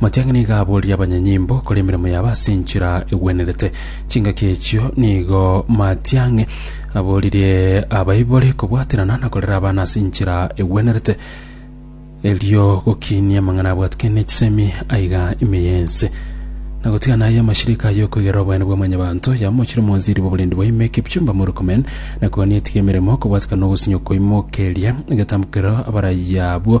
Matiang'i nigo aboririe abanyanyimbo kore emeremo yabo ase enchera egwenerete. Chingaki echio nigo Matiang'i aboririe abaibori kobwaterana na korera abana ase enchera egwenerete, erio gokiinia amang'ana abwatikane ne chisemi aiga ime y'ense, na gotigana aye amashirika aye okoigerera oboyene bwa mwanyabanto. Yamochire omwanziri bw'oborendi bwa ime Kipchumba Murkomen, na koania etige emeremo kobwatikana na ogosinywa kwaimokeria egetamokero abaraia abwo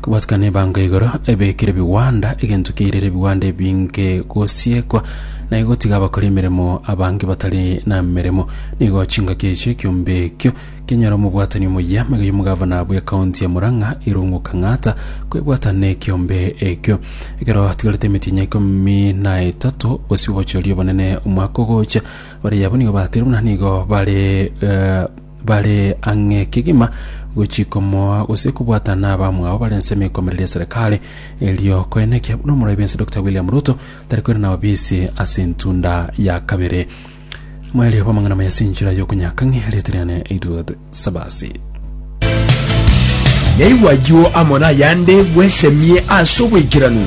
Kobwatika nebango igoro ebekire ebigwanda, egento kiairire ebigwanda ebinge gosiekwa, na igotiga abakora emeremo abange batari nameremo. Nigo chingaki echio ekiombe ekio kianyare omobwatani omuya. Maiga y'omogavana bwe county ya Murang'a Irungu Kang'ata kwebwata nekiombe ekio. Ekero tigarete emetienyi ikomi na etato bosio bochoria obonene omwaka ogocha, bare yabo nigo batire buna nigo bare eh, bare ang'e kegima gochia komoa gose kobwatana n'abamwao bare ensemo ekomereria eserekari erio koenekia buna omorai bwense Dr William Ruto tari koirana obisi ase entunda ya kabere mwaerio bw'amang'ana maya ase enchera y'okonyaka ng'e erieta riane Edward Sabasi. Naigwa ayio amo nayande bwesemie ase obwaikeranu.